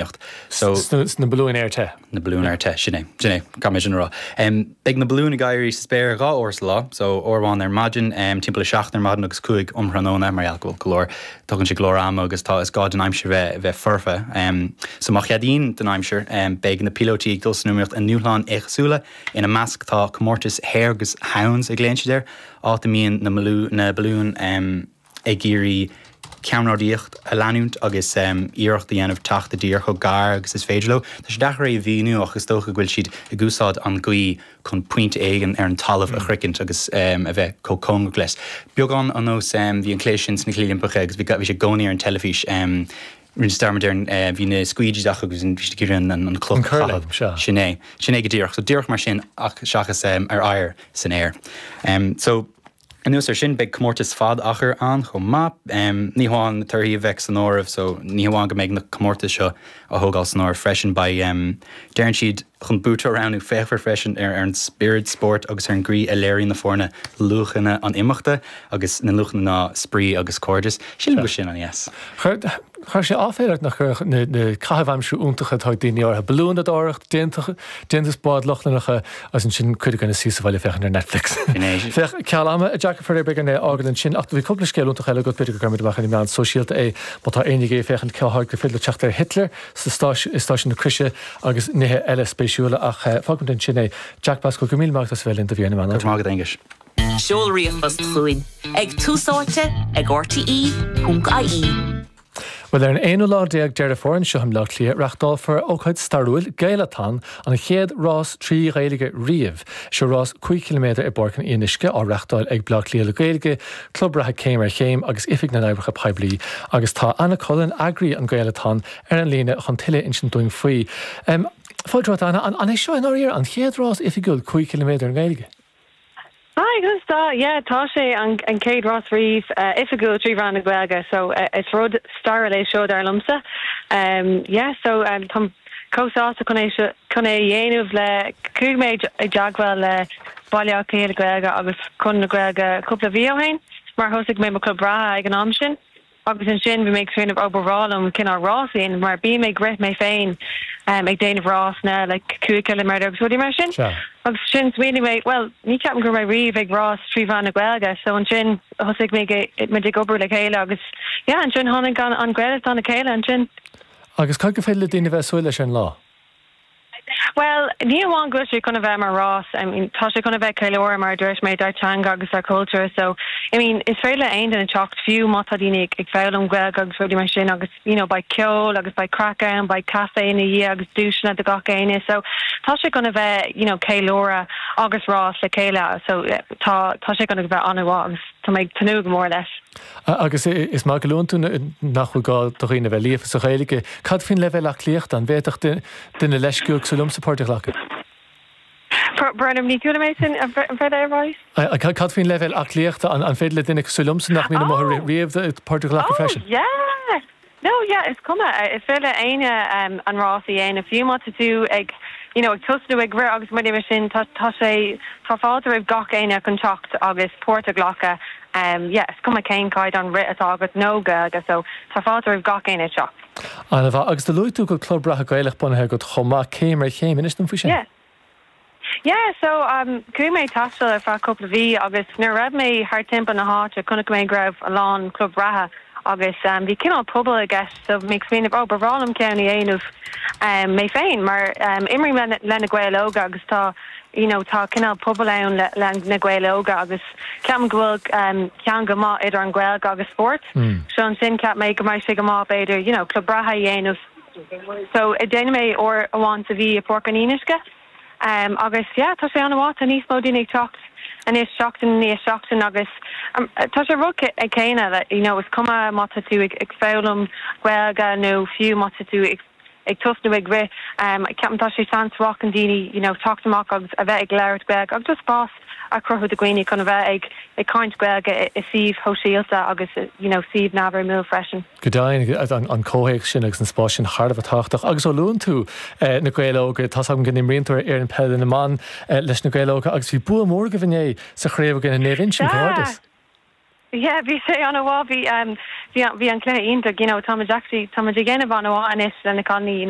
Ar na balúin aer te. Na balúin aer te, sin é, sin é, caithfidh mé sin a rá. Beidh na balúin ag éirí sa spéir dhá uair sa lá, so uair amháin ar maidin, timpeall a seacht ar maidin agus cúig um thráthnóna, mar gheall go bhfuil go leor, tógann sé go leor ama agus tá, is gá don aimsir bheith, bheith foirfe. So má cheadaíonn an aimsir, beidh na píolóití ag dul san iomaíocht i ndúshláin éagsúla, ina measc tá comórtas Hare agus Hounds a nglaonn siad air, áit a mbíonn na, na balúin, ag iarraidh ceannródaí a leanúint agus iarracht a dhéanamh teacht i dtír chomh gar agus is féidir leo. Tá sé deacair é a mhíniú ach is dócha go bhfuil siad ag úsáid an ghaoi chun pointe éigin ar an talamh a shroichint agus a bheith chomh cóngarach leis. Beagán ar nós, bhí an cluiche sin sna Cluichí Oilimpeacha agus bhí sé i gcónaí ar an teilifís, rinne mé dearmad air, bhí na squeegees acu agus bhí siad ag iarraidh an chloch a chaitheamh. Sin é. Sin é go díreach. So díreach mar sin ach seachas ar oighear, san aer. So. Anuas ar sin, beidh comórtas fad achair ann chomh maith. Ní hamháin na torthaí a bheidh san áireamh, so ní hamháin go mbeidh na comórtais seo á thógáil san áireamh freisin, beidh, deireann siad, chun buaiteoir a roghnú. Féachfar freisin ar an spiorad spóirt agus ar an gcaoi a léiríonn na foirne luachanna an imeachta agus na luachanna ná spraoi agus cairdeas. Sílim go sin an yes. Chuirfeadh sé aiféala ort nach gcuirfeadh na caithimh aimsire iontacha atá ag daoine, balúnadóireacht, déantús bád Lochlannacha agus ansin cuid againn ag suí sa bhaile ag féachaint ar Netflix. Féach, ceal ama, a Jack, faraor beidh orainn é a fhágáil ansin ach bhí cúpla scéal iontach eile agat, b'fhéidir go gcuirfimid amach ar na meáin sóisialta é má tá éinne ag féachaint, conas gur féidir leat teacht ar Hitler i stáisiúin na croise agus nithe eile spéisiúla ach fágfaimid ansin é. Jack Pascoe, go míle maith agat as a bheith linn do Bhliain na Meán Fhómhair. Go raibh maith agat, a Aonghuis. Seol ríomhphost chugainn ag Tús Áite at RTÉ.ie. Bhuel, ar an aonú lá déag Deireadh Fómhair anseo i mBleá Cliath, reachtálfar ócáid stairiúil, Gaelathon, an chéad rás trí Ghaeilge riamh. Seo rás cúig chiliméadar i bPáirc an Fhíonuisce, á reachtáil ag Bleá Cliath le Gaeilge, Club Reatha Céim ar Chéim agus Oifig na nOibreacha Poiblí. Agus tá Anna Cullen, eagraí an Gaelathon, ar an líne chun tuilleadh a insint dúinn faoi. Fáilte romhat, Anna. An é seo i ndáiríre an chéad rás oifigiúil cúig chiliméadar i nGaeilge? Hi, conas atá? Yeah, tá sé, an chéad rás riamh oifigiúil trí mheán na Gaeilge, so is rud stairiúil é seo dar liomsa. Yeah, so táim chomh sásta chun é seo, chun é a dhéanamh le, chuaigh mé i dteagmháil le Baile Átha Cliath le Gaeilge agus Conradh na Gaeilge cúpla mhí ó shin mar thosaigh mé mo chlub reatha ag an am sin. agus ansin bhí mé ag smaoineamh, ó ba bhreá liom cineál rás a dhéanamh, mar bím ag rith mé féin, em, ag déanamh rásanna, like, cúig chiliméadar agus rudaí mar sin, Sea. agus ansin smaoinigh mé, bhuel, ní cheapaim go raibh mé riamh ag rás trí mheán na Gaeilge, so ansin thosaigh mé ag, muid ag obair le chéile agus, yeah, ansin tháinig an, an Gaelathon le chéile ansin. Agus cad gur féidir le daoine a bheith a' súil leis ar an lá? Bhuel, ní hamháin go bhfuil sé chun a bheith mar rás, I mean, tá sé chun a bheith ag ceiliúradh, mar a dúirt mé, ár dteanga agus dár gcultúr. So, I mean, is féidir le haon duine teacht, fiú má tá daoine ag ag foghlaim Gaeilge agus rudaí mar sin agus, you know, beidh ceol agus beidh craic ann, beidh caife ina dhiaidh agus duaiseanna do gach éinne. So, tá sé chun a bheith, you know, ceiliúradh agus rás le chéile. So, tá, tá sé chun a bheith an-mhaith agus tá mé ag tnúth go mór leis. Agus is maith go luann tú nach bhfuil gá do dhaoine a bheith líofa sa Ghaeilge, cad faoin leibhéal aclaíochta, an bhféadfadh duine leisciúil cosúil liomsa páirt a ghlacadh? Brón orm, ní chuala mé sin, an bhféadfá é a rá? Cad faoin leibhéal aclaíochta, an féidir le duine cosúil liomsa nach mbíonn amuigh riamh páirt a ghlacadh freisin? Ó, yeah! No, yeah, is cuma, is féidir le éinne an rás a dhéanamh, fiú má tá tú ag, you know, ag tosnú ag rith agus rudaí mar sin, tá, tá sé, tá fáilte roimh gach éinne chun teacht agus páirt a ghlacadh, yeah, is cuma cén caighdeán rith atá agat, nó Gaeilge, so tá fáilte roimh gach éinne teacht. Ana mhaith. Agus do luaigh tú go bhfuil club reatha Gaelach bunaithe agat chomh maith, céim ar chéim, inis dom faoi sin? Yeah, Yeah, so um chuaigh mé taisteal ar feadh cúpla mhí agus nuair a raibh mé thart timpeall na háite chonaic mé go raibh a lán club reatha agus um bhí cineál pobal i gceist so bhí mé ag smaoineamh oh ba bhreá liom ceann a dhéanamh um mé féin mar um imrím le le na Gaeil óga agus tá you know tá cineál pobal ann le le na Gaeil óga agus ceapaim go bhfuil um ceangal maith idir an Ghaeilge agus spórt so ansin cheap mé go mbeidh sé go maith b'fhéidir you know club reatha a dhéanamh. So déanann mé uair amháin sa mhí i Páirc an Fhíonuisce agus yeah tá sé an-mhaith, tá níos mó daoine ag teacht anois seachtain i ndiaidh seachtain agus tá sé rud céanna le you know is cuma má tá tú ag foghlaim Gaeilge nó fiú má tá tú ag ag tosnú ag rith, ceapaim tá sé seans mhaith chun daoine you know teacht amach agus a bheith ag labhairt Gaeilge agus just spás. a chruthú do dhaoine chun a bheith ag caint Gaeilge i suímh shóisialta agus you know suímh neamhfhoirmiúil freisin. Go deimhin, tá an comhthéacs sin agus an spás sin thar a bheith tábhachtach agus ó luann tú Na Gaeil Óga, tá's agam go n-imríonn tú ar fhoireann peile na mban leis Na Gaeil Óga agus bhí bua mór agaibh inné sa chraobh i gcoinne Naomh Uinsionn, comhghairdeas! Yeah, bhí sé ana mhaith, bhí an cluiche iontach, you know tá muid actually, tá muid ag dhéanamh ana mhaith anois le na cailiní, you know.